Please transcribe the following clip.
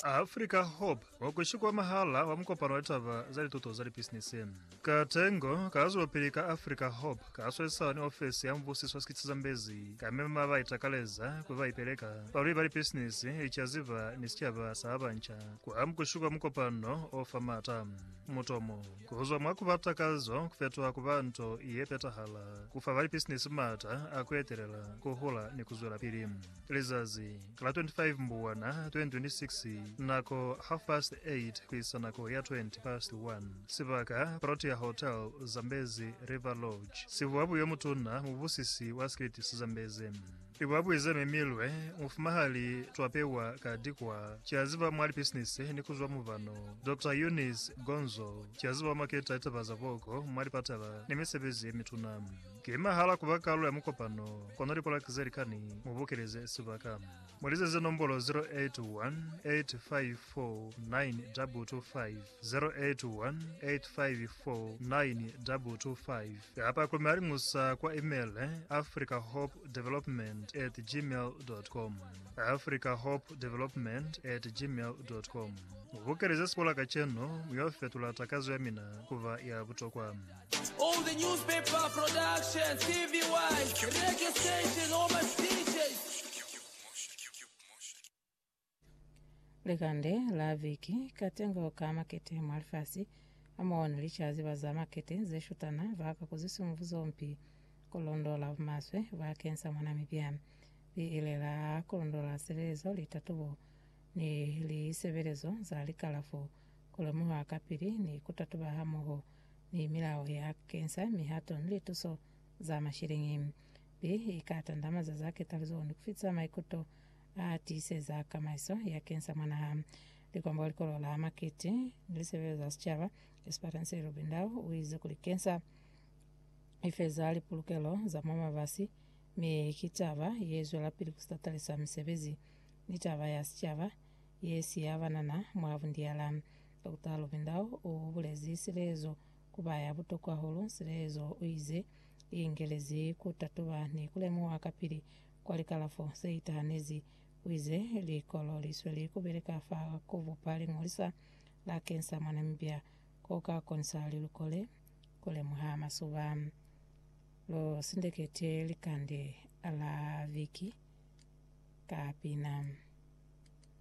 Africa Hope wa ku Shikwamahala wa Mukopano wa Litaba za Lituto za Lipisinisi. Katengo ka zwelopili ka Africa Hope ka swesisana ni ofisi ya Mubusiso wa Sikitsi Zambezi ka mema ba itakaleza kuli ba ipeleka, balweli ba lipisinisi, licaziba ni sicaba sa ba banca ku amukushi kwa mukopano o fa maata. Mutomo, ku zwa mwa ku ba takazo ku fetuha ku ba nto ye petahala, ku fa ba lipisinisi maata a ku etelela, ku hula ni ku zwelapili. Lizazi la 25 Mbuwana 2026 Nako, half past 8 ku isa nako ya 20 past 1 Sibaka, Protea Hotel, Zambezi River Lodge Sibuabu yo mutuna, mubusisi wa Skillet sa Zambezi Libuabui ze memilwe mufumahali Twa pewa ka dikwa Kya ziba mwa lipisinisi ni kuzwa mubano Doctor Eunice Gonzo Kya ziba maketa litaba za boko mwa lipatala ni misebezi ye mituna. Ki mahala kuba kalulo ya mukopano kono lipolaki ze likani mu bukeleze sibaka. Mu lizeze nombolo 0818549225, 0818549225, kapa ku mi aliñusa kwa email africahopedevelopment at gmail dot com, africahopedevelopment at gmail dot com. Mu bukeleze sipolaka cenu, mi yo fetula takazo ya mina kuba ya butokwa. Likande la viki, Katengo ka makete mwa lifasi hamoho ni licaziba za makete ze shutana ba ka kuziswa mwa buzompi ku londola bumaswe bakeng sa mwa Namibia. Li ile la kulondola silelezo, litatubo, ni lisebelezo za likalafo, ku lemuha kapili ni ku tatuba hamoho. ni milao ya kensa mihato ni lituso za mashilingi. Bi i ka tandamaza za ketalizo ni ku fitisa maikuto a tiiseza kamaiso ya kensa mwa naha. Likwambaho likolo la makiti ni lisebele za sicaba, Esperance Lubindau u ize kuli kensa i feza lipulukelo za mwa mabasi mi ki taba ye zwelapili ku sitatalisa misebezi ni taba ya sicaba ye si ya banana mwa bundiala. Dokota Lubindao u bulezi silezo ku ba ya butokwa hahulu. Silezo u ize, I ingelezi ku tatuba ni ku lemuha kapili kwa likalafo ze itahanezi. U ize, Likolo li sweli ku beleka fa ku bupa liñolisa la kensa mwa Namibia ko ka konisa lilukole ku lemuha masuba. Lu sindekete likande la viki ka pina.